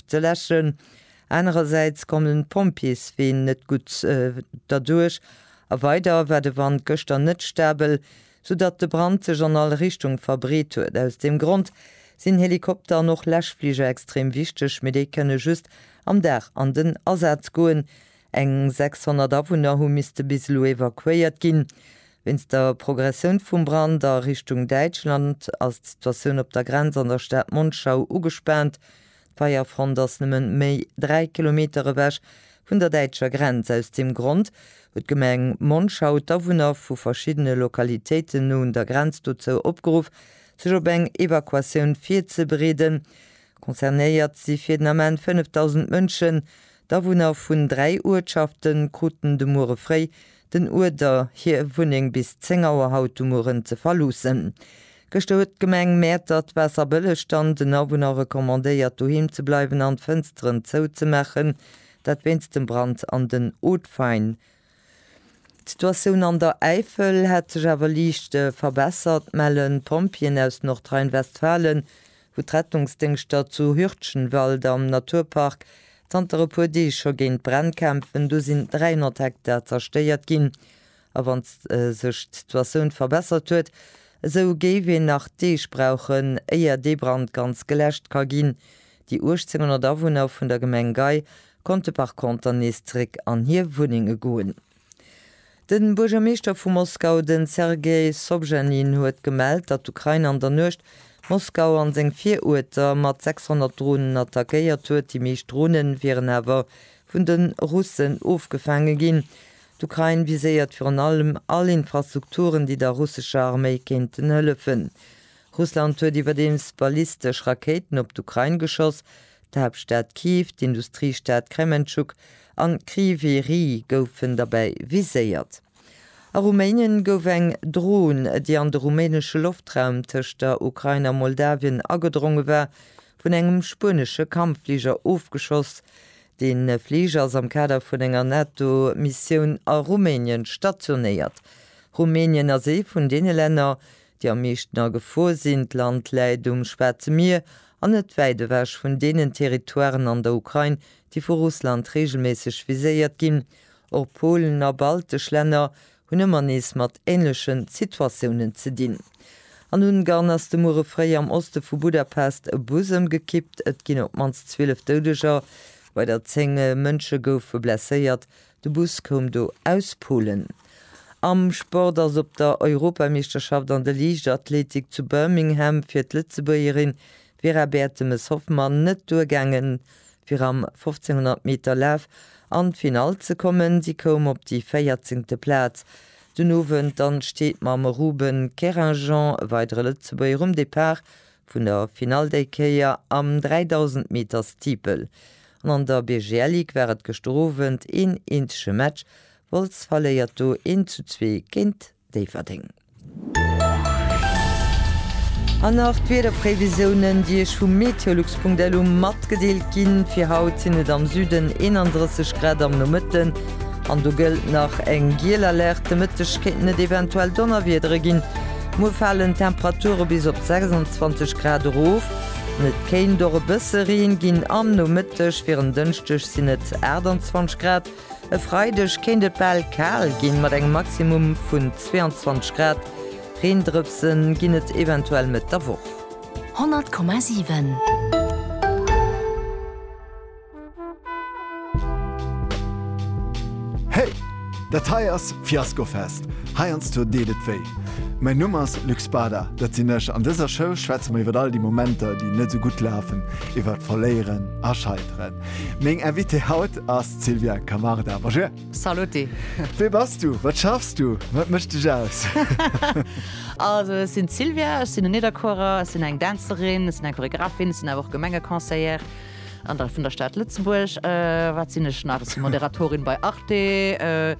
ze läschen. Anerersäits kommen d'Pompjees ween net gutt derduerch a weider war de Wand gëschter net stabel, sou datt de Brand sech an all Richtung verbreet huet. Aus deem Grond sinn Helikopter an och Läschfliger extrem wichteg, mee déi kënne just am Dag an den Asaz goen. Eng 600 Awunner hu misste bis elo evakuéiert ginn. Wéinst der Progressioun vum Brand a Richtung Däitschland ass d'Situatioun op der Grenz an der Stad Monschau ugespaant. D'Feierfront ass nëmme méi 3 Kilometer ewech vun der däitscher Grenz. Aus deem Grond huet d'Gemeng Monschau d'Awunner vu verschiddene Lokalitéiten no un der Grenz dozou opgeruff, sech op eng Evakuatioun virzebereeden. Concernéiert si fir den Ament 5.000 Mënschen, D'Awunner vun dräi Uertschafte kruten de Muere fréi den Uerder, hir Wunneng bis 10 Auer haut de Mueren ze verloossen. Gëschter huet d'Gemeng Mäertert d'Waasser bëlleg, dann den Awunner recommandéiert, doheem ze bleiwen an d'Fënsteren zouzemaachen, dat wéinst dem Brand an den Hautes Fagnes. D'Situatioun an der Äifel hätt sech awer liicht verbessert, mellen d'Pompjeeën aus Nordrhein-Westfalen, wou d'Rettungsdéngschter zu Hürtchenwald am Naturpark zanter e puer Deeg scho géint d'Bränn kämpfen. Do sinn 300 Hektar zerstéiert ginn. A wann sech d'Situatioun verbessert huet, esou géif een nach Deeg brauchen, éier dee Brand ganz geläscht ka ginn, Déi 1800 Awunner vun der Gemeng Gei konnte par conter nees zeréck an hir Wunnenge goen. De Buergermeeschter vu Moskau, de Sergei Sobjanin, huet gemellt, datt d'Ukrain an der Nuecht Moskau an seng Viruerter mat 600 Dronen attackéiert huet. Déi meescht Drone wieren awer vun de Russen ofgefaange ginn. D'Ukrain viséiert virun allem all Infrastrukturen, déi der russescher Arméi kéinten hëllefen. Russland huet iwwerdeems ballistesch Rakéiten op d'Ukrain geschoss. D'Haaptstad Kyiv, d'Industriestad Krementschuk an Kryvyi Rih goufen derbäi viséiert. A Ruménien gouf eng Dron, déi an de rumänesche Loftraum tëscht der Ukrain a Moldawien agedronge war, vun engem spuenesche Kampffliger ofgeschoss. De Fliger ass am Kader vun enger NATO-Missioun a Rumänien stationéiert. Rumänien ass ee vun deene Länner, Déi am meeschten a Gefor sinn. D'Land läit um Schwaarze Mier an net wäit ewech vun deenen Territoiren an der Ukrain, déi vu Russland reegelméisseg viséiert ginn. Och Polen a baltesch Länner hunn ëmmer nees mat änlechen Situatiounen ze dinn. An Ungarn ass de Muere fréi am Oste vu Budapest e Bus ëmgekippt. Et ginn op d'mannst 12 Doudeger, weider 10 Mënsche goufe blesséiert, De Bus koum do aus Polen. Am Sport ass op der Europameeschterschaft an der Liichtathletik zu Birmingham fir d'Lëtzebuergerin Vera Bertemes-Hoffmann net duergaangen, fir am 1500 Meter Laf an d'Finall ze kommen. Si koum op déi véierzéngte Plaz den Owend an steet mam Ruben Keringeon, e weidere Lëtzebuerger, um Depart Vun der Finall déi Kéier am 3000 Meter Steeple. An an der BGLigue war et gëschter Owend een eenzege Match, Wolz verléiert do 1 zu 2 géint Déifferdeng. An nach d'Wiederprévisiounen, déi Iech vu meteolux.lu matgedeelt ginn. Fir haut sinn et am Süden 31 Grad am Nomëtten an do gëllt nach eng giel Alerte. Mëtteg kéinten et eventuell Donnerwiedere ginn. Muer falen d'Temperature bis op 26 Grad erof an et kéint och e bësse Reen ginn. Am Nomëtteg, fir en Dënschdeg, sinn et 28 Grad. E Freideg kéint et bal kal ginn, mat engem Maximum vun 22 Grad. Reendrëpse ginn et eventuell Mëtt der Woch. 100,7. Hey! Dat hei ass Fiasco Fest, heiansdo deet et wéi. Mäin Numm ass Luc Spada, dat sinn ech. An dëser Show schwätze mer iwwer all déi Momenter, déi net esou gutt lafen, iwwer Verléieren a Scheiteren. Meng Invitée haut ass d'Sylvia Camarda. Bonjour! Saluti! Wee bass du? Wat schaffs du? Wat mécht dech aus? Also, ech sinn d'Sylvia, ech sinn en Nidderkuerer, ech sinn eng Dänzerin, ech sinn eng Choreographin, ech sinn awer och Gemengeconseillère. An da vun der Stad Lëtzebuerg, wat sinn ech nach? Ech si Moderatorin bei Arte,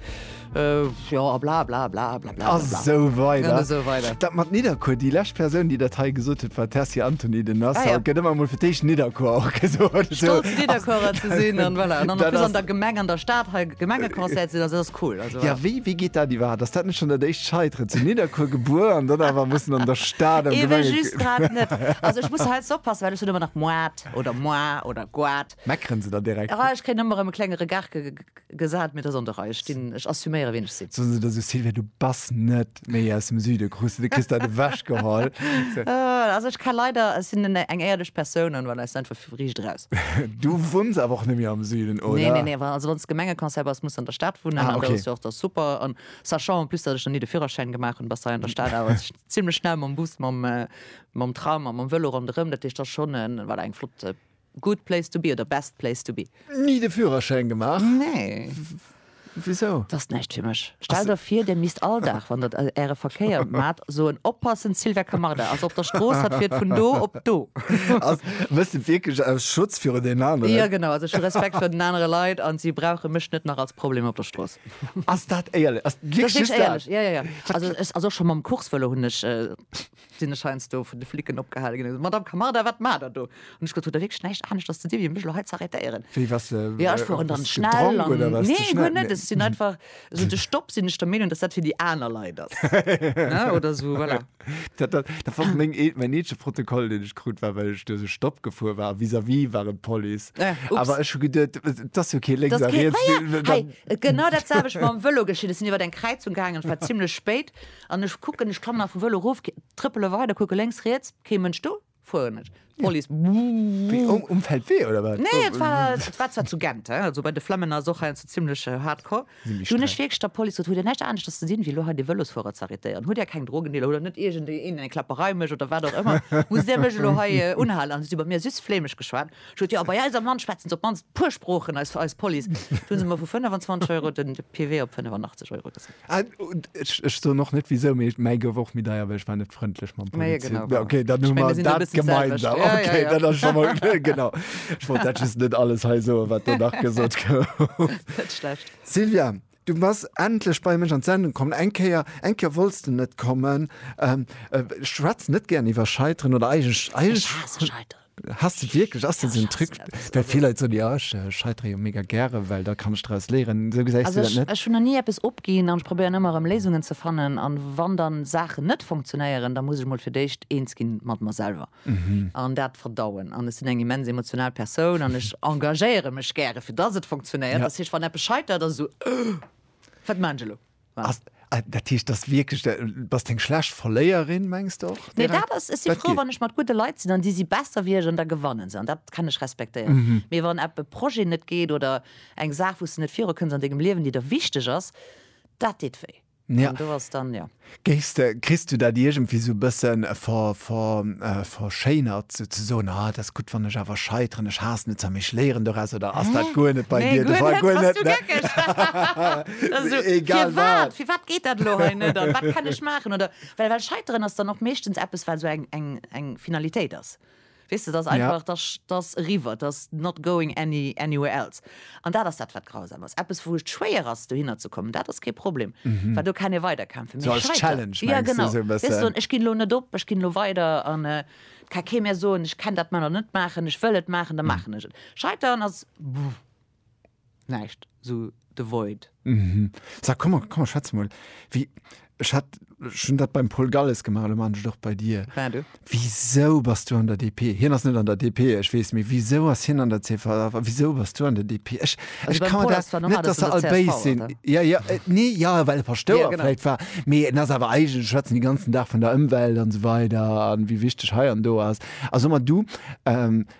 jo a blablabla. A sou weider. Dat mat Nidderkuer, déi lescht Persoun, déi dat hei gesot huet, war d'Tessy Antony. Den ass haut, gëtt ëmmer emol fir d'éischt Nidderkuer och gesot. Stolz Nidderkuerer ze sinn an voilà. An dann an der Gemeng, an der Stad hei Gemengeconseiller ze sinn, also dat ass cool. Jo, wéi geet dat iwwerhaapt? Ass dat net schonn dat éischt Scheiteren? Zu Nidderkuer gebuer an dann awer mussen an der Stad am Gemengeconseil. Eben just grad net. Also ech muss hei jetzt oppassen, well ech hunn ëmmer nach. Goat oder Moir oder Goat. Meckeren se da direkt? Ah, ech kréien ëmmer erëm e klenge Regard ge, ge, gesat, mee et ass an der Rei. Ech stinn, ech assuméieren, wien ech sinn. Soen se da sou, Sylvia, du bass net méi aus dem Süden, krus de de kriss dat ewechgeholl. Ah, also ech ka leider, ech sinn en, eng éierlech Persoun an voilà, ech sinn einfach riicht raus. Du wunns awer och net méi am Süden, oder? Nee, nee, nee, wa, also wann s Gemengeconseil bass, muss s an der Stad wunnen Ah, an da okay. ass jo och da super. An sachant en plus, datt ech nach ni de Führerschäin gemaach hunn, bass hei an der Stad awer zimlech schnell mam Bus, mam, Mam Tram a mam Vëlo ronderëm, dat heescht ass schonn e voilà eng flott Good place to be oder Best place to be. Ni de Führerschäin gemaach? Nee. Wisou? Dat ass näischt fir mech. Stellt der vir, der misst all Dag, wann der Äre Verkéier maacht, soen, Oppassen, Sylvia Camarda ass op der Strooss, hatt fiert vun do op do. Also méchs de et wierklech aus Schutz viru den aneren? Jo, genau. Also ech hu Respekt vir den anere Leit an si brauche mech net nach als Problem op der Strooss. Ass dat éierlech? Ass dat wierklech just dat? Dat ass wierklech éierlech, jo, jo, jo. Also ass och schonn mam Coursevëlo hunn ech. sinn ech heiansdo vun de Flicken opgehale ginn, Madame Camarda, wat maacht Der do? Hunn ech gesot, Hutt Der wierklech näischt anescht als ze di wéi mech elo hei ze arrêtéieren? Wéi, waars de, Jo, ech fueren dann schnell gedronk an, oder waars de nee, guer schnell? net, ech sinn einfach, esou de Stopp sinn ech der Meenung, dass dat fir déi aner Leit ass, ne, oder esou, voilà. Dat, dat, dat war meng ee, mäin eenzege Protokoll, deen ech krut, war well ech duerch e Stopp gefuer war a vis-à-vis war et d'Police. Äh, ups. Awer ech hu geduet, et ass jo kee lénks Das a geht, riets, ja, ja, dann, hei, genau dat selwecht mam Vëlo geschitt. Ech sinn iwwer eng Kräizung gaangen, et war zimlech spéit, An ech kucken, ech klammen vum Vëlo erof, trëppele weider, kucke lénks, riets, kee Mënsch do, fueren ech. D'Police, Wéi, um Feldwee oder wat? Nee, et war, et war zwar zu Gent, hein, also bei de Flemmen ass och heiansdo zimmlech hardcore. Sinn méi Du hunn ech streng. wierklech der Police gesot, Hutt Dir näischt aneschters ze dinn, wéi elo hei dee Vëlosfuerer ze arrêtéieren? Hutt Dir keng Drogendealer, hutt Der net iergendeen eng Klapperei mécht oder wat och ëmmer, musst Dir mech elo hei unhalen? An si hu bei mir süss flämesch geschwat. Ech huet jo, a bei eis am Land schwätzen se op d'mannst puer Sproochen, eis eis Police. Do hunn se mer vu 25 Euro den de PW op 85 Euro gesat. Ah, ech, ech soen och net wisou, mee mäi gouf och méi deier, well ech war net frëndlech mam Maja, Polizist. genau, Ja, okay, dann hu mer dat selwecht. gemeinsam. Ja, ja, Okay, ja. dat ass scho mal genau. Ech wollt dat just net alles hei soen, wat do nach gesot gouf. Net schlecht. Sylvia, Du bass endlech bei mech an d'Sendung kommen. Eng Kéier, eng Kéier wolls de net kommen. Ech schwätze net gären iwwer Scheiteren oder eigentlech, eigentlech. Ech haasse Scheiteren. Haass de wierklech? Ass dat esou en Truc? Well vill Leit soen, jo, ech scheitere jo mega gären, well da kann ech draus léieren. Esou gesäis du dat net? Also ech hunn nach ni eppes opginn an ech probéieren ëmmer erëm Léisungen ze fannen. An wann dann Saachen net funktionéieren, da muss ech mol fir d'éischt eens ginn mat mer selwer. an dat verdauen an ech sinn eng immens emotional Persoun an ech engagéiere mech gäre fir dass et funktionéiert, dass heescht wann eppes scheitert ass esou wat maachen ech elo. Dat heescht dass wierklech de, bass de eng schlecht Verléierin mengs de och? Nee dat ass, ech si frou wann ech mat gudde Leit sinn an déi si besser wéi ech an da gewanne se an dat kann ech respektéieren, mee wann epp e Projet net geet oder eng Saach wou s de net virukënns an dengem Liewen déi der wichteg ass, dat deet wéi. Ja. An do ass dann, jo. Géifs de, kriss du dat iergendwéi sou e bëssen ver, ver, verschéinert, sou ze soen, ah, et ass gutt, wann ech awer scheiteren, ech haassen et, ech léieren doraus, oder ass dat guer net bei dir de Fall? Guer net, ne? Bass du geckeg? Also sou, egal wat. Firwat, firwat geet dat elo hei net an wat kann ech maachen? Oder, well, well scheiteren ass dann och meeschtens eppes, wat sou eng, eng, eng Finalitéit ass. Weess de, 't ass einfach, 't ass, 't ass eriwwer, 't ass not going any, anywhere else. An dat ass dat, wat grausam ass. Eppes, wou et schwéier ass, dohinner ze kommen, dat ass kee Problem, well do kann ee weiderkämpfen. Mee scheiteren, jo genau, wéi soen, ech ginn elo net op, ech ginn elo weider an 't ka kee mir soen, ech kenn dat manner net maachen, ech wëll et maachen, da maachen ech et. Scheiteren ass, buh. Näischt, sou de Void. Mhm. Sa, komm mer, komm mer schwätze mol. Wéi, ech hat schonn dat beim Paul Galles gemaach, elo maachen ech et och bei dir. Ben, du? Wisou bass du an der DP? Hien ass net an der DP, ech weess, mee wisou ass hien an der csv a wisou bass du an der DP? Ech, ech ka mer dat, net dass se all béis sinn, ja, ja, nee, jo, well e Paschtouer vläicht war, mee en ass awer eigentlech, schwätzen déi ganzen Dag vun der Ëmwelt an esou weider an wéi wichteg hei an do ass. A so mer, du,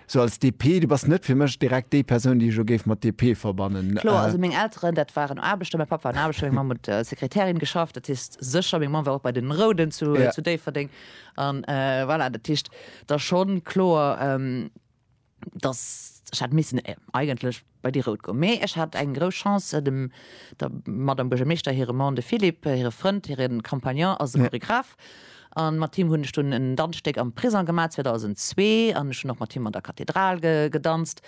Sou als DP, du bass net fir mech direkt déi Persoun, déi ech elo géif mat DP verbannen. Kloer, also meng Elteren, dat waren Aarbechter, mäi Papp war en Aarbechter, meng Mamm huet als Sekretärin geschafft, dat heescht sécher, meng Mamm war och bei den Rouden zu Déifferdeng an voilà, dat heescht da schonn kloer, dass ech hätt missen eigentlech. Bei déi rout goung. Mee ech hat eng grouss Chance, dem der Madame Buergermeeschter hire Mann, de Philippe, hire Frënd, hire Compagnon ass e Choregraph an mat him hunn ech dunn en Danzstéck am Prisong gemaach 2002 an ech hunn och mat him an der Kathedral gedanzt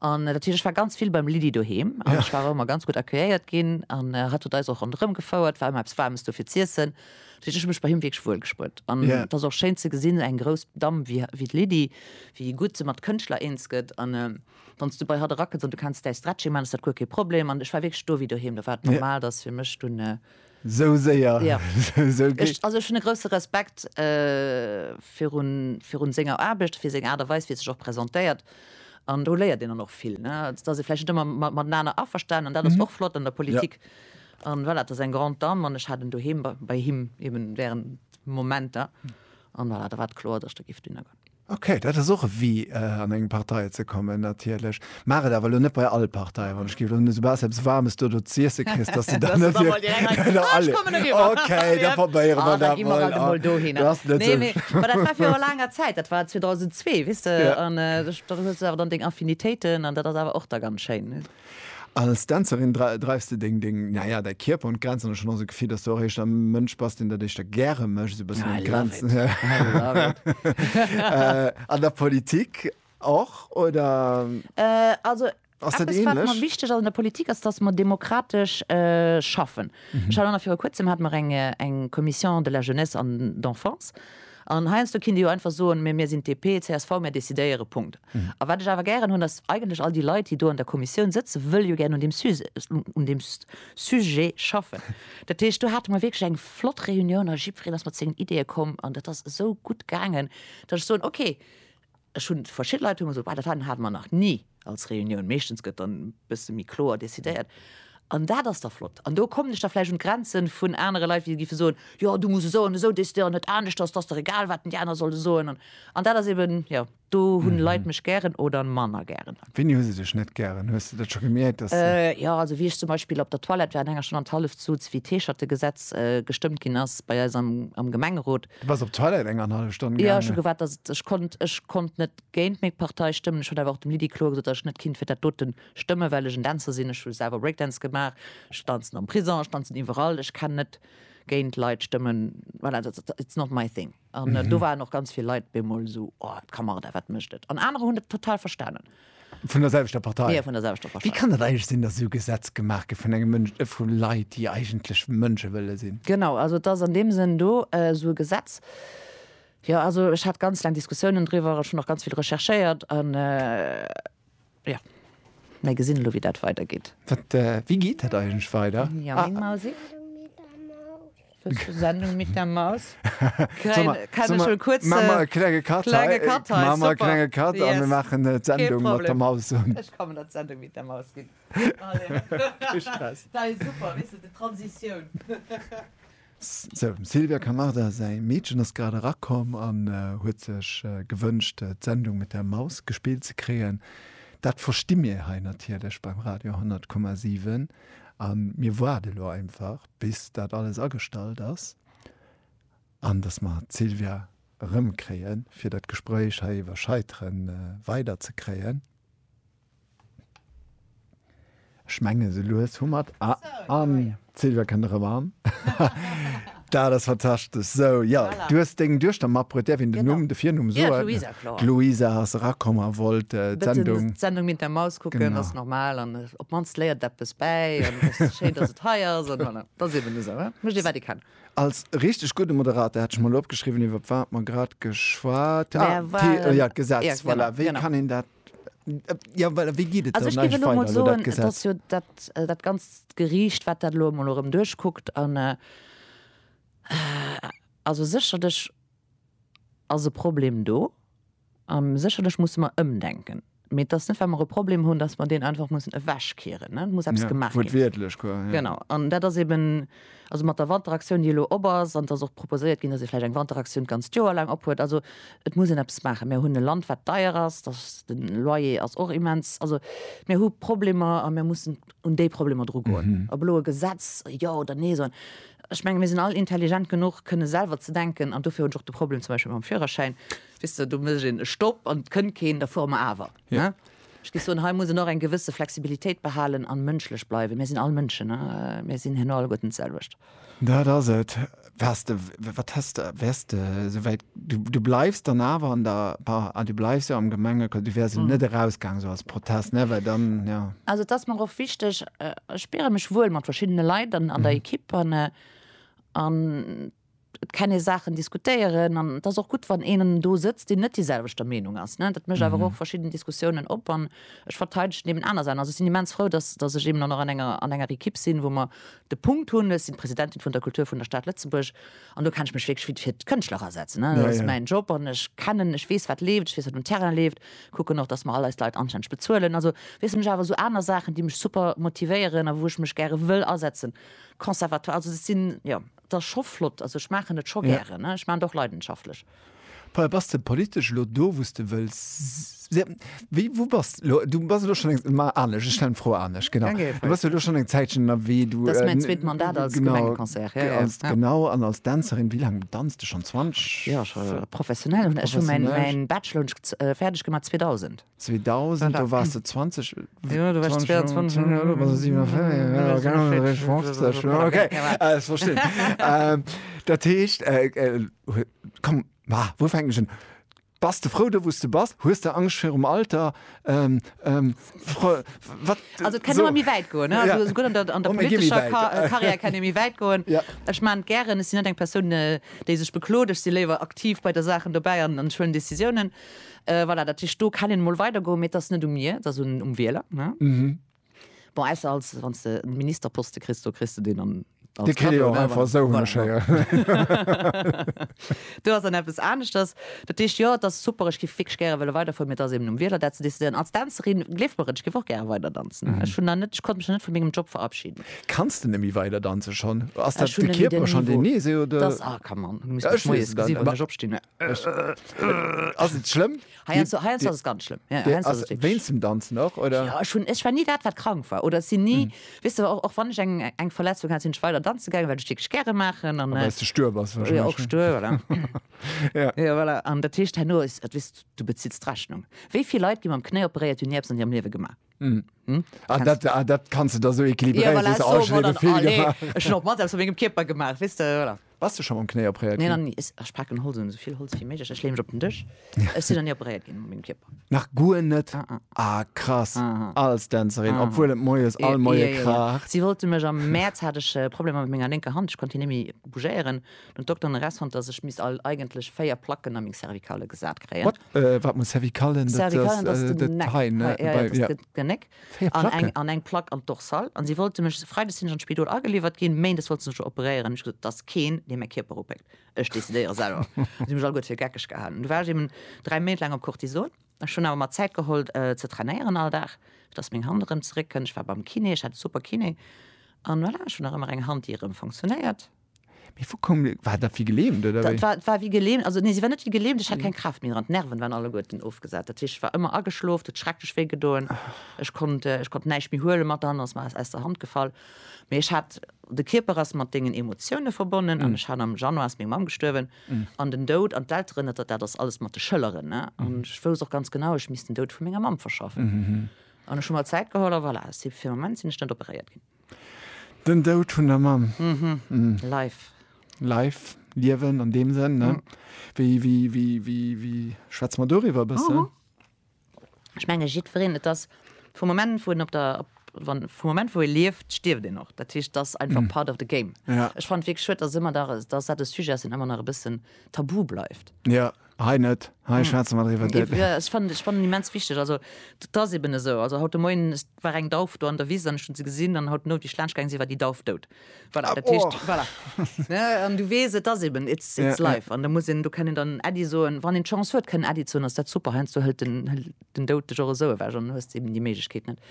an dat heescht ech war ganz vill beim Lydie doheem an ech war och ëmmer ganz gutt accueilléiert ginn an hatt huet eis och ronderëm gefouert, war ëmmer eppes Waarmes do fir z'iessen. Dat heescht ech hu mech bei him wierklech wuel gespullt an et ass och schéin ze gesinn, eng grouss Damm wéi d'Lydie, wéi gutt se mat Kënschtler eens gëtt an. wann s du bei hatt erakënns an du kenns däi Stretching man, ass dat guer kee Problem. An ech war wierklech do wéi doheem, do war et normal, datt fir mech dunn, Sou séier, jo, sou gutt. Ech, also ech hunn e grousse Respekt virun, virun senger Aarbecht, fir seng Aart a Weis, wéi e sech och presentéiert. An do léiert een dann och vill, ne, also datt ee vläicht net ëmmer mat, matenaner averstanen an dat ass och flott an der Politik. An voilà, et ass eng grande dame an ech hat en doheem bei him eben während Momenter an voilà, da war et kloer, datt ech do géif dunner goen. Ok, dat ass och e Wee an eng Partei ze kommen natierlech. Maach et awer elo net bei all Partei, wann ech géif elo soubal s eppes Waarmes do do z'iesse kriss, dass de dann net fir alle. Ok, da probéiere mer dat mol. Du ass net esou schlëmm. Dat war viru laanger Zäit, dat war 2002, weess de, an do hues de awer dann deng Affinitéiten an dat ass awer och da ganz schéin. Als Dänzerin dreifs de deng, deng, naja, däi Kierper un d'Grenzen. Ech hunn och esou d'Gefill, dass du och éischter e Mënsch bass, deen dat éischter gäre mécht, esou e bëssen un d'Grenzen. An der Politik och, oder ass dat ähnlech? Eppes, wat mer wichteg ass an der Politik, ass, dass mer demokratesch schaffen. Ech hat och nach viru Kuerzem, hate mer eng Commission de la Jeunesse an d'Enfance. An heiansdo kinnt ee jo einfach soen, Mee mir sinn d'DP, csv, mir decidéieren. Punkt. A wat ech awer gären hunn, ass, Eigentlech all déi Leit, déi do an der Kommissioun sëtzen, wëlle jo gären un deem Suse, un deem Sujet schaffen. Dat heescht, do hate mer wierklech eng flott Reunioun a jiddwereen ass mat sengen Ideeë komm an dat ass esou gutt gaangen, datt ech soen, Okay, Ech hunn verschidde Leit hu mer gesot, dat hate mer nach ni als Reunioun. Meeschtens gëtt dann e bësse méi kloer decidéiert. An dat ass da flott. An do kommen ech da vläicht un d'Grenze vun anere Leit, wéi giffe soen, jo du muss esou an esou decidéieren, net anescht, ass ass der egal, wat déi aner solle soen. An an dat ass eben, jo, do hunn d'Leit mech gären oder manner gären. Wéini hu se dech net gären? Hues de dat scho gemierkt, dass se. Jo, also wéi ech zum Beispill op der Toilette war an enger Stonn an d'Halleft suz, wéi d'Heescherte-Gesetz gestëmmt ginn ass bei eis am Gemengerot, Du bass op d'Toilette eng an hallef Stonn gaangen? Jo, ech hu gewaart, datt et, ech konnt, ech konnt net géint meng Partei stëmmen. Ech hunn awer och dem Lydie kloer gesot, datt ech net kinnt fir dat doten stëmmen, well ech en Dänzer sinn, ech hu selwer Breakdance gemaach, ech danzen am Prison, ech danzen iwwerall, ech kenn net géint Leit stëmmen, voilà, dat, dat, it's not my thing. An do waren och ganz vill Leit bemol esou, oh, d'Camarda, wat mécht et? An anerer hunn et total verstanen. Vun der selwechter Partei? Jo, vun der selwechter Partei. Wéi kann dat eigentlech sinn, datt esou Gesetz gemaach gëtt vun engem Mënsch, vu Leit, déi eigentlech Mënsche wëlle sinn? Genau, also et ass an deem Sënn do esou e Gesetz. Jo, also ech hat ganz laang Diskussiounen driwwer, ech hunn och ganz vill recherchéiert an, jo, mä gesinn elo, wéi dat weidergeet. Wat, wéi geet dat eigentlech weider? Ja, meng Mausi. Sendung mit der Maus klenge Kat an mir machen net Sendung mat der Maus Silvia Camarda säi Meedchen ass grad erakomm an huet sech gewënscht d'Sendung mit der Maus gespillt ze kréien. Dat versti mir hei natierlech beim Radio 10,7 an mir woarde lo einfach. bis dat alles agestallt ass an datt mer d'Sylvia erëmkréien, fir dat Gespréich hei iwwer Scheitere weiderzekréien. Ech menge sou lues hu mer et. Ah, an d'Sylvia kënnt erëm an. Dat ass fantastesch. Sou, jo, du hues deng Duechter matbruet. Däerf een den Numm, de Virnumm soen? Jo, d'Luisa, kloer. D'Luisa ass erakomm a wollt d'Sendung. D'Sendung Minter Maus kucken, ass normal. An op d'mannst léiert et eppes bäi an et ass schéin, dass et hei ass an voilà, et ass eben esou, hein, mécht ee wat ee kann. Als richteg gudde Moderator, hat ech mol opgeschriwwen, iwwer wat mer grad geschwat, ah, Mer d'Tee, waren, ja, d'Gesetz, ja, voilà, genau, wéi genau. kann een dat, ja, well wéi geet et Also dann ech géif eigentlech elo mol weider, elo dat soen, et Gesetz? ass jo dat, dat ganzt Geriicht, wat dat elo emol erëm duerchkuckt an, also sécherlech ass e Problem do, A sécherlech musse mer ëmdenken. Mee et ass net, well mer e Problem hunn, datt mer deen einfach mussen ewechkeeren. Et muss eppes gemaach ginn. Wuertwiertlech, quoi, ja. Genau. An dat ass eeben, also mat der Wanteraktioun, déi elo op ass, an et ass och proposéiert ginn, datt ee vläicht eng Wanteraktioun d'ganzt Joer laang ophuet. Also et muss een eppes maachen. Mer hunn e Land, wat deier ass. Dat, de Loyer ass och immens. Also mir hu Problemer a mir mussen un déi Problemer dru goen. Ob elo e Gesetz jo oder nee soen, ech menge mir sinn all intelligent genuch, kënne selwer ze denken. An dofir hunn ech och de Problem zum Beispill mam Führerschäin. Weess de, do mécht een e Stopp an et kënnt keen, da fuere mer awer. Ne? Ech géif soen, hei muss een och eng gewësse Flexibilitéit behalen an mënschlech bleiwen. Mir sinn all Mënschen, mir sinn herno alleguerten d'selwecht. Dat ass et. Waars de, wat häss de, wäers de esou wäit, du, du bleifs dann awer an der, bah, ah, du bleifs jo am Gemengeco, du wäers net erausgaang esou als Protest, ne, well dann, jo. Also et ass mer och wichteg, ech spiere mech wuel mat verschiddene Leit an der Ekipp an, an Et kann ee Saachen diskutéieren an et ass och gutt, wann een do sëtzt, deen net déiselwechter Meenung ass. Dat mécht awer och verschidden Diskussiounen op an ech verteidegen eben aner Saachen. Also ech sinn immens frou, dass, dass ech eben dann och an enger, an enger Ekipp sinn, wou mer de Punkt hunn, ech sinn d'Presidentin vun der Kultur vun der Stad Lëtzebuerg an do kann ech mech wierklech fir, fir d'Kënschtler asetzen. Dat ass jo mäin Job an ech kennen, ech weess wat leeft, ech weess wat um Terrain leeft, kucken och, dass mer all eis Leit anständig bezuelen. Also weess de mech awer esou aner Saachen, déi mech super motivéieren a wou ech mech gäre wëll asetzen, Conservatoire, also dat sinn, jo. 't ass scho flott, also ech maachen et scho gären, ech maachen et och leidenschaftlech. Paul, bass de politesch elo do, wou s de wëlls si? Wéi, wou bass de elo? Du bass elo schonn eng, ma anescht, ech stellen d'Fro anescht, genau. Du bass jo elo schonn eng Zäitchen ënnerwee, du, Dat ass mäin zweet Mandat als genau, Gemengeconseiller, ja, ja, ja. Genau, an als Dänzerin, wéi laang danz de schonn? 20, Jo, scho professionell, ech hu mäin, professionell? mäin Bachelor hunn ech fäerdeg gemaach 2000. 2000, do wars de 20. Jo, do war ech 22. Jo, do bass de 57. Jo, genau, ech war 50. Okay, ech verstinn. Dat heescht, komm, ma wou fänken ech un? Bass de frou do, wou s de bass? Hues de Angscht virum Alter? Wat? Also et kennt ëmmer méi wäit goen, ne? Also souguer an der, an der politescher Karriär kennt ee méi wäit goen. Ech maan et gären, ech sinn net eng Persoun, déi sech beklot, ech si léiwer aktiv bei der Saachen dobäi an huelen Decisiounen. Voilà, dat heescht, do kann een emol weidergoen, mee et ass net u mir, et ass um Wieler, ne? Bon, ausser als, wann s de e Ministerposte kriss, do kriss de deen dann als Kado, ne? Dee kritt een och einfach esou, hunn ech héieren. Do ass dann eppes aneschters. Dat heescht, jo, et ass super, ech géif wierklech gäre wëlle weiderfueren, mee et ass eben um Wieler, dat ze decidéieren. Als Dänzerin, gleeft mer et, ech géif och gäre weider danzen. Ech hunn nach net, ech konnt mech nach net vu mengem Job verabschiden. Kanns de net méi weider danzen schonn? Ass dat de Kierper schonn, deen, nee, se, oder? Dass, ah, come on, du muss mech moies gesi wann ech opstinn. ass et schlëmm? ganz schlimm zum danzen nach oder ja, schon ich war nie dat wat krank war oder sie nie mhm. wis du auch, auch wann ich eng eng Verletzung hat sind weiter dann zu geil weil du stich gerne machen an äh, du stör was ja, auch stör oder ja. ja, voilà. an der Tisch nur ist wis du bezits Rechnung wie viel Leute die man Knie operiert die nie an ihrem Leben gemacht Hm. Hm? Ah, dat, ah, dat kannst du da so equilibréieren. Ja, voilà, oh, so, oh, dann, oh, nee. Ech hun op mat aus mégem Kierper gemaach wis de oder. Was du schon am Knéi opréiert? Nee, dann, ech packen Holz un sovill Holz wie méiglech. Ech leem mech op den Dësch. Ech si dann nie opréiert ginn mégem Kierper. Nach guer net? Ah, ah. ah krass. Ah, ah. Als Dänzerin, ah. obwohl et moies all moie yeah, yeah, kracht. Yeah. Si wollte mech am März hat ech äh, Probleme mat menger linker Hand. Ech konnte net méi bougéieren. Den Doktor an Rest fand, dass ech mis all eigentlech véier Placken an meng Cervikale gesat kréien. What? Äh, wat muss cervicale? Cervicale, dat ass den Neck. Hei, ne? Ja, dat ass den Neck. Véier Placken? An eng Plack am Dorsal. An si wollte mech, Freides sinn ech an d'Spidol ageliwwert ginn, Méindes wollte se mech operéieren. Ech gesot, et ass keen, dee mäi Kierper opéckt. Ech decidéiere selwer. Si hu mech alleguer fir geckeg gehalen. Du war ech eben dräi Méint laang op Cortison. Ech hunn awer mer Zäit geholl, ze trainéieren all Dag, fir dass meng Hand erëm zeréckkënnt. Ech war beim Kiné, ech hat e super Kiné. An voilà, ech hunn nach ëmmer eng Hand, déi erëm funktionéiert. Mee vu koum de, war dat wéi gelähmt oder wéi? Dat war wéi gelähmt, also nee si war net wéi gelähmt, ech hat keng Kraaft méi dran, d'Nerven waren alleguerten ofgesat, dat heescht ech war ëmmer ageschlof, et huet schrecklech wéi gedoen, ech konnt ech konnt näischt méi huelen, mat der Hand ass mer aus der Hand gefall. Mee ech hat, de Kierper ass mat dengen Emotioune verbonnen an ech hat, am Januar ass meng Mamm gestuerwen an den Doud an d'Elteren, dat dat ass alles mat de Schëlleren ne an ech wousst och ganz genau, ech misst den Doud vu menger Mamm verschaffen an ech hu mer Zäit geholl a voilà, si fir de Moment sinn ech net operéiert ginn. Den Doud vun der Mamm. Life. Life, Liewen an deem Sënn, ne? Wéi schwätze mer doriwwer e bëssen? Ech menge jiddwereen, et ass vum Moment, wou en op der, wann, vum Moment, wou ee lieft, stierft een och. Dat heescht, et ass einfach part of the game. Ech fannen et wierklech schued, dass ëmmer nach, dass dat e Sujet ass, deen ëmmer nach e bëssen tabu bleift. Hei net, hei schwätze mer driwwer. Ja, ech fannen, ech fannen immens wichteg, also dat ass eben esou. Also haut de Moien war eng Dauf do an der Wiss an ech hunn se gesinn an haut den Owend wéi ech laanscht gaange sinn, war déi Dauf dout. Voilà, dat heescht, voilà, ne, an du weess, et ass eben, it's, it's life an da muss een, do kann een dann Äddi soen, wann een d'Chance huet kënnen Äddi ze hunn, ass dat super, heiansdo hëlt den, hëlt den Doud dech och esou ewech an du hues eben déi Méiglechkeet net,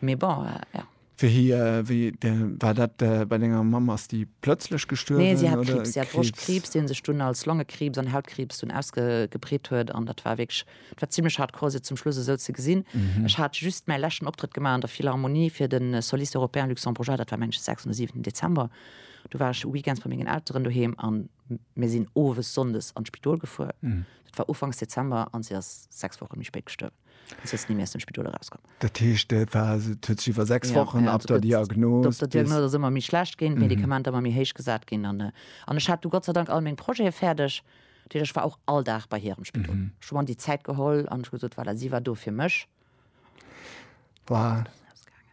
mee bon, ja. Wéi war dat bei denger Mamm? Ass déi plëtzlech gestuerwen? Nee, si hat Kriibs. Si hat Broschtkriibs, dee sech dunn als Longekriibs an Hautkriibs dunn ausgebreet huet. An dat war wierklech, dat war zimlech hardcore, se zum Schluss esou ze gesinn. Ech hat just mäi leschten Optrëtt gemaach an der Philharmonie fir de Soliste Européen Luxembourgeois, dat war mengen ech de sechsten oder siwenten Dezember. Du war ech weekends bei mengen Elteren doheem a mir sinn owes sonndes an d'Spidol gefuer. Dat war ufanks Dezember an si ass sechs Woche méi spéit gestuerwen. ass jetzt ni méi aus dem Spidol erauskomm. Dat heescht et war et huet sech iwwer 6 Ja, Wochen ja, ab also der gëtt- Diagnos Op der bis- Diagnos ass ëmmer méi schlecht ginn, d'Medikamenter ëmmer méi héich gesat ginn an äh, an ech hat du Gott sei Dank all meng Projete fäerdeg. Dat heescht, ech war och all Dag bei hir am Spidol. Ech hu mer an déi Zäit geholl an ech hu gesot, voilà, si war do fir mech. Wow. Ausgaangen.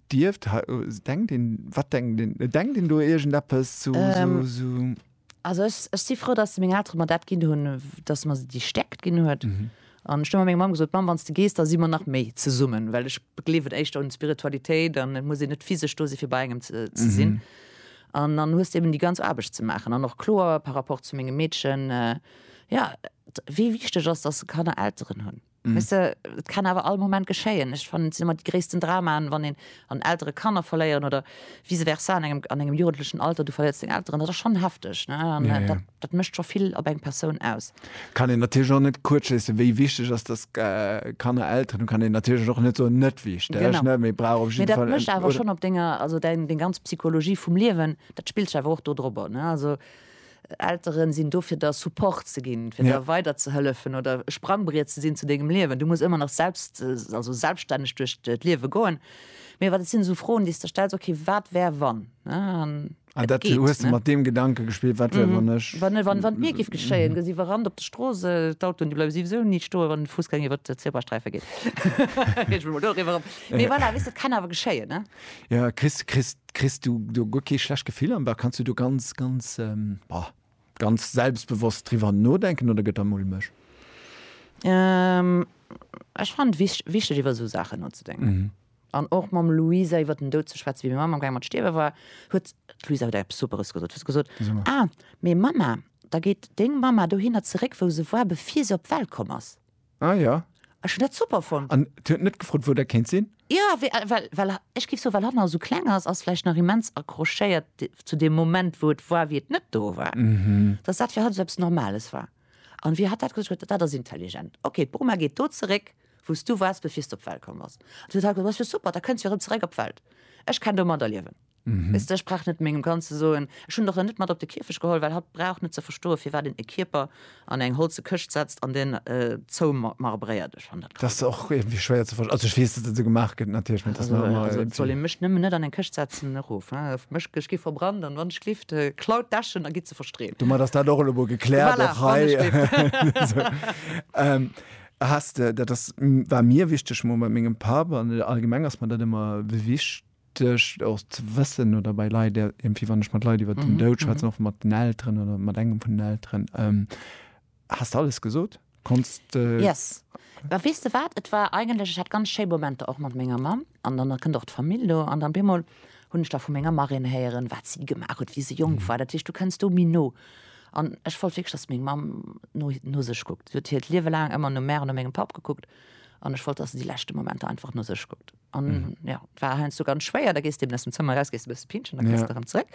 Dierft, denkt een, wat denkt een, denkt een do iergend eppes zu, su. Also ech, ech si frou, datt meng Eltere mer dat ginn hunn, datt mer se déi Stäerkt ginn huet. An ech hu menger Mamm gesot, Mamm, wann s de gees, da si mer nach méi zesummen, well ech gleewen éischter un d'Spiritualitéit an et muss een net physesch do si fir bei engem ze sinn. An dann hues de eben déi ganz Aarbecht ze maachen. An och kloer par rapport zu mengem Meedchen, jo, wéi wichteg ass, datt se Kanner Elteren hunn. Weess de, et kann awer all Moment geschéien. Ech fannen, et sinn ëmmer déi gréissten Dramaen, wann een an Eltere Kanner verléieren oder vice versa an engem, an engem jugendlechen Alter, du verléiers deng Elteren. Dat ass schonn hefteg, ne? An dat, dat mécht scho vill op eng Persoun aus. Kann een natierlech och net kuerz schléissen, wéi wichteg ass, dass Kanner Elteren hunn, kann een natierlech och net soen, net wichteg, ne? Mee brauch op jidde Fall, oder? Mee dat mécht awer schonn op denger, also deng, deng ganz Psychologie vum Liewen, dat spillt sech awer och do drop ab, ne? Also Elteren sinn do fir der Support ze ginn, fir der weider ze hëllefen oder Sprangbriet ze sinn zu dengem Liewen. Du muss ëmmer nach selbst, also selbststänneg duerch d'Liewe goen. Mee wat et sinn esou Froen déi s de stells, ok wat wär wann, ne? An dat geet, ne? Hues de mat deem Gedanke gespillt, wat wär wann ech. Wann et wann et mir géif geschéien, gesi wir Rand op de Strooss, d'Autoen déi bleiwe siwesou ni stoen, wann de Fussgänger iwwert d'Zebrasträife geet. Reege mech mol doriwwer op. Mee voilà, weess de, et kann awer geschéien, ne? Ja, kriss, kriss, kriss du do guer kee schlecht Gefill am Bauch? Kanns du do ganz, ganz, ähm, bah, ganz selbstbewosst driwwer nodenken oder gëtt der mulmeg? Ähm, ech fannen et wich, wichteg iwwer esou Saachen nozedenken. An och mam Luisa iwwer den Doud ze schwätzen. Wéi meng Mamm am Gaang mat stierwe war, huet, d'Luisa huet eppes Superes gesot, huet se gesot, Ah, mee Mamma, da geet deng Mamma dohinner zeréck, wou se war, bevir se op d'Welt komm ass. Ah ja. Ech hun dat super fonnt. An et huet net gefrot wou dat kéint sinn? Ja, we well well ech giff soe well hatt nach esou kleng ass, ass vläicht nach immens accrochéiert zu deem Moment wou et war wéi et net do war, datt dat fir hatt esou eppes normales war. An wéi hatt dat gesot huet, dat ass intelligent. Ok, d'Bruma geet do zeréck wou s du wars bevir s d'op d'Welt komm bass. An du huet hatt gesot, dat ass jo super, da kënns du jo erëm zeréck op d'Welt. Ech kenn domadder liewen. Mhm. Weißt du, ech brauch net mengem Kand ze soen, ech hunn der en net mat op de Kierfech geholl, well hatt brauch net ze verstoen, firwat een e Kierper an eng holze Këscht setzt an deen äh, zoumarbréiert. Ech fann dat Dat ass krass. och irgendwie schwéier ze verstehen. Also ech weess, dass dat esou gemaach gëtt natierlech, mee dass Also, man ëmmer also et soll irgendwie. ee mech nëmmen net an eng Këscht setzen, erof. Äh, mech, ech gi verbrannt an wann ech lift, äh, klaut d'Äschen a gitt se verstreen. Domat ass dat och elo emol gekläert, Voilà, och wann ech hei. lift. So. Ähm, Hast de, dat ass, m, war mir wichteg, mol mat mengem Papp, an allgemeng ass mer dat ëmmer wicht, Duerch och ze wëssen oder bei Leit, iergendwéi wann ech mat Leit iwwer den Doud schwätzen, och mat den Elteren oder mat engem vun den Elteren, has de alles gesot? Konns de. Yes. Mä weess de wat, et war eigentlech, ech hat ganz schéi Momenter och mat menger Mamm an dann kënnt och d'Famill do an dann op eemol hunn ech da vu menger Marraine héieren, wat si gemaach huet, wéi se jonk war. Dat heescht, du kënns do méi no. An ech wollt wierklech, dass meng Mamm no, no sech kuckt. Si huet hiert Liewe laang ëmmer no mär an no mengem Papp gekuckt an ech wollt, dass se déi leschte Momenter einfach no sech kuckt. an mhm. ja war heinz du ganz schwéier da gest dem dem Zimmer raus gest bist pinschen dann ja. daran zurück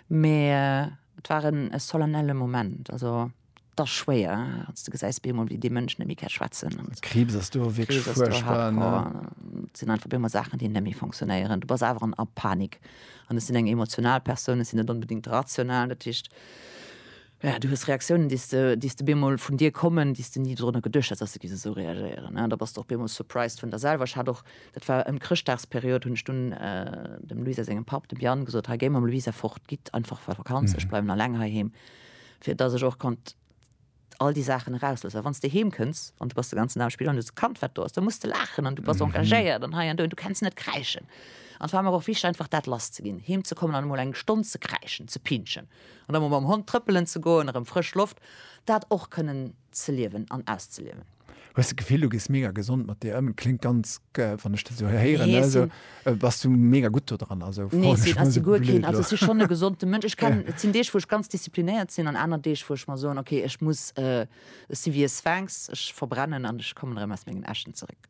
mehr äh, waren es solennelle moment also das schwer als du geseist bin wie die Menschen nämlich schwatzen und krebs hast du wirklich krebs, du hart, ne? Oh, sind einfach immer Sachen die nämlich funktionieren du bist einfach an Panik und es sind eng emotional Personen sind nicht unbedingt rational natürlich Jo, du hues Reaktiounen, déi s de op eemol vun dir kommen, déi s de ni dorunner geduecht häss, dass se géifen esou reagéieren. Da bass de och op eemol surprised vun der selwer. Ech hat och, dat war ëm d'Chrëschtdagsperiod, hunn ech dunn dem Luisa sengem Papp, dem Yann, gesot, Hei, géi mam Luisa fort, gitt einfach a Vakanz, ech bleiwen alleng heiheem, fir dass ech och konnt all déi Saachen erausloossen. Well wann s de heem kënns an du bass de ganzen Dag am Spill an du hues e Kand, wat do ass, da muss de laachen an du bass engagéiert an hei an do an du kenns net kräischen. An et war mer och wichteg, einfach dat lass ze ginn, heem ze kommen an emol eng Stonn ze kräischen, ze pinschen. An da mol mam Hond trëppelen ze goen, erëm frësch Loft, dat och kënnen ze liewen an auszeliewen. Hues de d'Gefill, du gees mega gesond mat dir ëm? Kléngt ganz, wann ech dat esou héieren, Nee, ech sou, sinn. bass du mega gutt do dran? Also Nee, froen ech sinn, mol ech sinn esou guer keen, blöd also ech elo. sinn schonn e gesonte Mënsch. Ech kennen, et sinn Deeg wou ech ganz disziplinéiert sinn an aner Deeg wou ech mer soen, okay, ech muss, ech si wéi e Sphinx, ech verbrennen an ech kommen erëm aus mengen Äschen zeréck.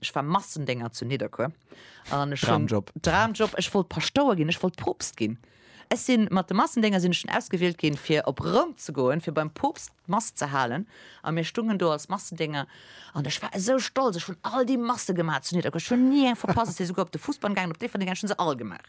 Ech war Massendénger zu Nidderkuer an ech hunn Dramjob. Dramjob, ech wollt Paschtouer ginn, ech wollt Poopst ginn. Ech sinn mat de Massendénger sinn ech dunn ausgewielt ginn fir op Roum ze goen, fir beim Poopst d'Mass ze halen a mir stungen do als Massendénger an ech war esou stolz, ech hunn all déi Masse gemaach zu Nidderkuer, ech hunn ni eng verpasst, ech si souguer op de Fussball gaangen, op Déifferdeng gaangen, ech hunn se all gemaach.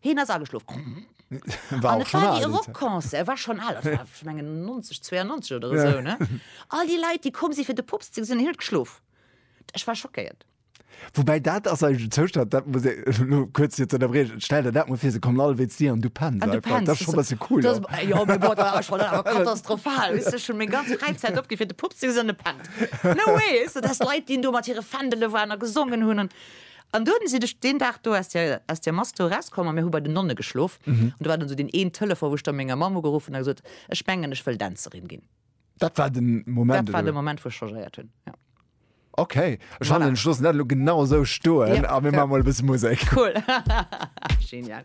Heen ass ageschlof. War och schon al. Rock Concert war schon al, ech mengen 90 92 oder esou ne all déi Leit déi komm si fir de Pops ze gesinn an hien huet geschlof. Ech war schockéiert. Woubäi dat ass eigentlech en Zoustand, dat muss ee, elo kuerz fir ze ënnerbriechen, stell der dat mol vir, se kommen all wéinst dir an du penns einfach. Dat ass schon e bësse cool. Dat ass jo mee bon, dat ass schon awer katastrophal, weess de, ech hunn meng ganz Fräizäit opginn fir de Pops ze gesinn an e pennt. No way, weess de, dass Leit, déi do mat hire Fändele waren a gesongen hunn an An dunn sinn ech deen Dag do aus der, aus der Mass do erauskomm a mir hu bei den Nonne geschlof. An do war dunn esou deen een Telefon, wou ech da menger Mamm ugeruff hunn a gesot, Ech mengen, ech wëll Dänzerin ginn. Dat war den Moment, Dat war oder? den Moment, wou ech changéiert hunn, jo. Okay, ech fannen, ech loossen dat elo genau esou stoen a mir maache mol e bësse Musek. Cool. Genial.